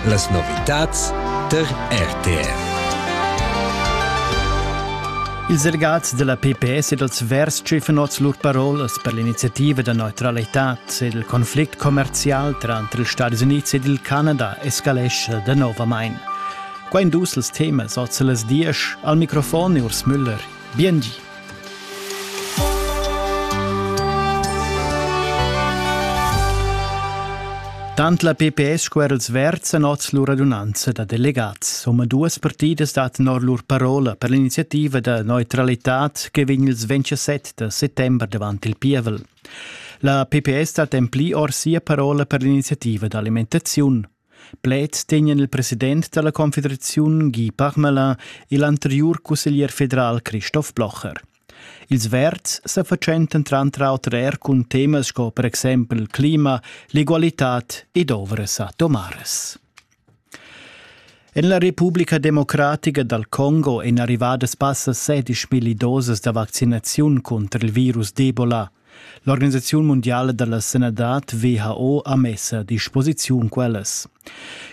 Las novitads tar RTR. Ils delegats della PPS e dels Verstschifenots lur parolas per l'iniziativa da neutralität ed il conflict commercial tranter ils Stati Uniti ed il Canada escalesce de novamain. Qua in dus els temas, oz las diesch, al microfon e Urs Müller, Biengi. Tant la PPS sco er els verds han oz lur radunanza da delegats. Omaduas partidas dattan or lur parola per l'iniziativa da neutralitad che vegn ils 27 da settembre davant il pievel. La PPS dat en pli or sia parola per l'iniziativa d'alimentaziun. Pleds tegnan il president dalla confederaziun Guy Parmelin e l'anteriur cusseglier federal Christoph Blocher. Ils verds sa fatschentan tranter auter er cun temas sco per exempel il clima, l'egualitad ed ovras atomaras. En la Republica Democratica dal Congo èn arrivadas passa 16 milliu dosas da vaccinaziun cunter il virus d'Ebola. L'Organisaziun mundiala da la sanadad WHO ha mess a disposiziun quellas.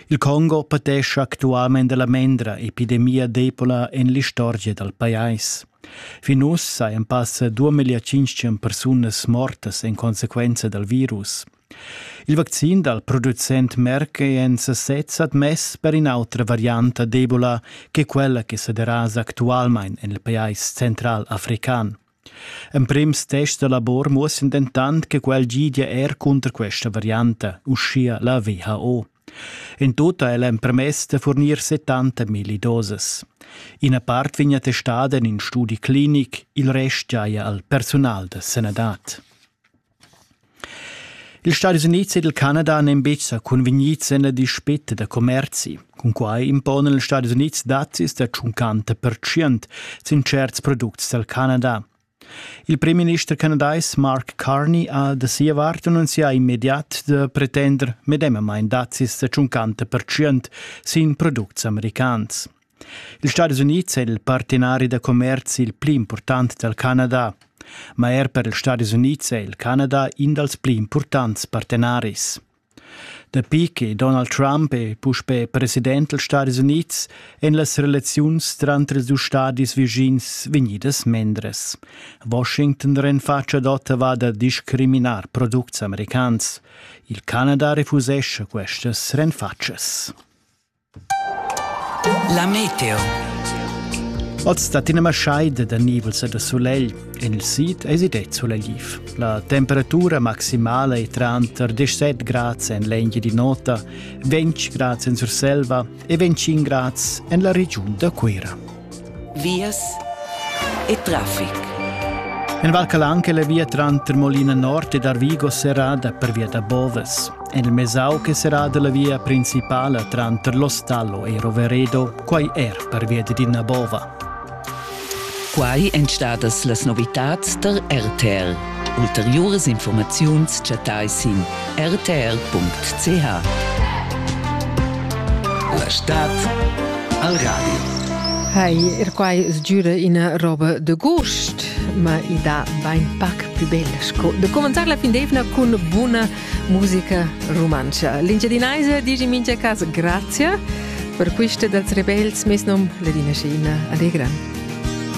Il Congo patescha actualmain la mendra epidemia d'Ebola en l'istorgia dal pajais. Fin uss sajan passa 2500 persunas mortas en consequenza dal virus. Il vaccin dal producent Merck è en sasez admess per in'autra varianta d'Ebola che quella che sa derasa actualmain en il pajais central african. Emprims tests da lavor muossan dentant che quel gidia er cunter questa varianta, uschia la WHO. In tut ha el empermess da furnir 70 milli doses. Ina part vegn attestada en in studi clinic, il rest giaja al personal da sanadad. Ils Stadis Unids ed il Canada n'èn betg sa cunvegnids en la dispeta da commerzi. Cunquai imponan ils Stadis Unids dazis da tschuncanta pertschient sin tscherts products dal Canada. Il primminister canadais Mark Carney ha da sia vart annunzià immediat da pretender medemamain dazis da tschuncanta pertschient sin products americans. Ils Stadis Unids è il partenari da commerzi il pli impurtant dal Canada. Ma er per ils Stadis Unids è il Canada in dals pli impurtants partenaris. Dapi che Donald Trump è puspè president dals Stadis Unids èn las relaziuns tranter ils dus stadis vischins vegnidas mendres. Washington renfatscha ad Ottawa da discriminar products americans. Il Canada refusescha questas renfatschas. La meteo. Oz dat ina maschaida da nivels e da sulegl en il sid es id sulegliv. La temperatura maximala è tranter 17 grads en l'Engia di Nota, 20 grads en Surselva e 25 grads en la regiun da Cuira. vias e traffic. En Val Calanche la via tranter Molina Nord ed Arvigo serrada per via da Boves. En il Mesau che serrada la via principala tranter L'Ostallo e Roveredo, quai er per via di Dinabova. Quai èn stadas las novitads tar RTL. Ulteriuras infurmaziuns chattais sin rtr.ch. La stad al radio. Hai, er quai sgiura ina roba de gust, ma i da bain pac più bella sco de comentar la fin d'evna cun buna musica rumantscha. L'Engiadinaisa dici mincha cas grazia per quista dels rebels mes nom Ledina Scheina. Allegra.